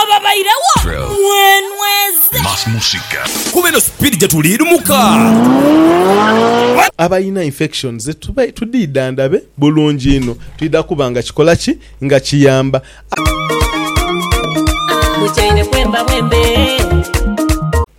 Ababairegho mwenweze. Más música. Kuba eno speed gyetuli lumuka. Abalina infection ze tubaire tudidhandabe bulungi inho twidha kuba nga kikola ki? Nga kiyamba. Mutyaime bwemba bwembe.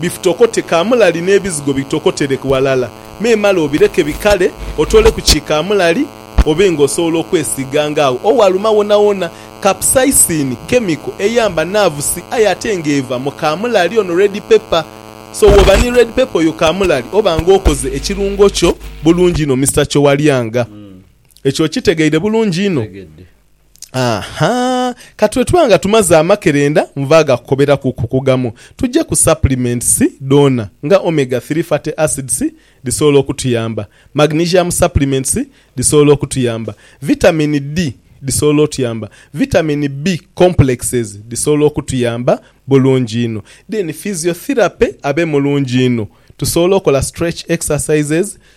Bifitokote kaamulali n'ebizigo bitokotele ghalala. Me male obileke bikale, otooleku ki kaamulali obe nga osobola okwesiiga nga agho owaluma wonawona. Capsaicin kemiko eyamba naavusi aye ate nga eva mu kaamulali ono, red pepper. So bwooba ni red pepper oyo kaamulali oba nga okoze ekirungo kyo bulungi inho Mister Kyowalyanga. Ekyo okitegeire bulungi inho? Aha! Ka tube tuba nga tumaze amakerenda nva agakukoberaku ku kugamu, tuje ku supplements dhoona nga omega three fatty acids dhisobola okutuyamba, magnesium supplements dhisobola okutuyamba, vitamin D dhisobola otuyamba, vitamin B complexes dhisobola okutuyamba bulungi inho. Then physiotherapy abe mulungi inho, tusobola okola stretch exercises,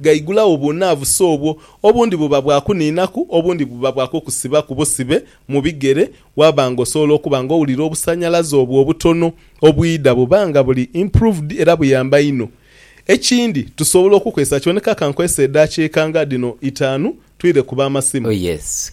Gaigulagho obunaavusi obwo, obundi buba bwa kuniinaku, obundi buba bwa kukusibaku busibe mu bigere, waaba nga osobola okuba nga owulira obusanhalaze obwo obutono obwidha buba nga buli improved era buyamba inho. Ekindi, tusobola okukozesa kyoneka ka nkozese edaakiika nga dhino itaanu twire ku b'amasimu. Oh yes,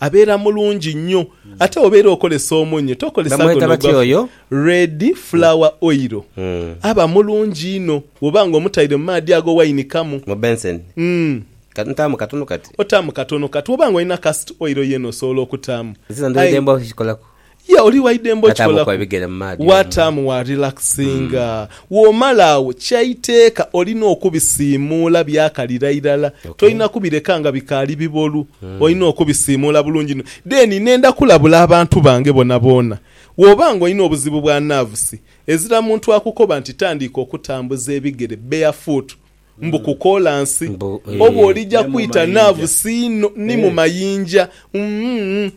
Abeera mulungi nnyo. Ate obeera okolesa omunyo tokolesa Bamweta guno batya ogwa oyo? red flour oil. Aba mulungi inho bwoba nga omutaire mu maadhi ago wainikamu. Mu benseni. Umm. Kati ntaamu katunu kati? Otaamu katono kati. Bwoba nga olina cast oil yeena osobola okutaamu. Nze dhino ndhwedhe aye. mbwa okikolaku. Ye oli waidembe okikolaku, waataamu wa relaxinga. Womala agho kya iteeka olina okubisiimuula byakalira irala, tolina kubireka nga bikaali bibolu, olina okubisiimuula bulungi inho. Then nenda kulabula abantu bange boonaboona, woba nga olina obuzibu bwa nerves, ezira muntu akukoba nti tandiika okutambuza ebigere, barefoot, Mbu ku kolansi. Oba olija kwita naavu siino ni mu mayinja. Umm.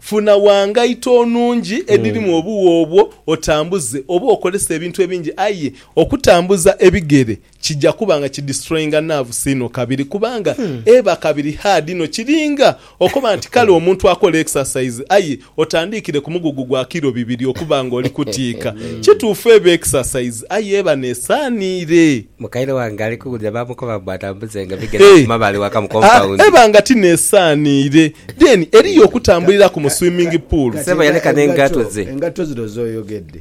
Funa wa ngaito nungi edhirimu obuwo obwo otambuze oba okolese ebintu ebingi aye okutambuza ebigere kija kuba nga ki destroyinga naavu siino kabiri kubanga eba kabiri hard inho kiringa Okoba nti, Kale omuntu akole exercise aye otandiikire ku mugugu gwa kilo bibiri okuba nga oli kutiika. Kituufu eba exercise aye eba n'esaaniire. Mukaire wange ali kuwulira baamukoba mbu atambuze nga bigere Hee, okuma bali waka mu ah, compound. eba nga ti n'esaaniire. Then eriyo okutambulira ku mu swimming pool. Kati Ssebo yaleka enga- n'engato engato, ze. engato zino z'oyogedde,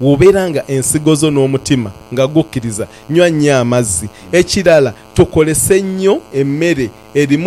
Bw'obeera nga ensigo zo n'omutima nga gukkiriza, nywa nnyo amazzi. Ekirala, tokolese nnyo emmere erimu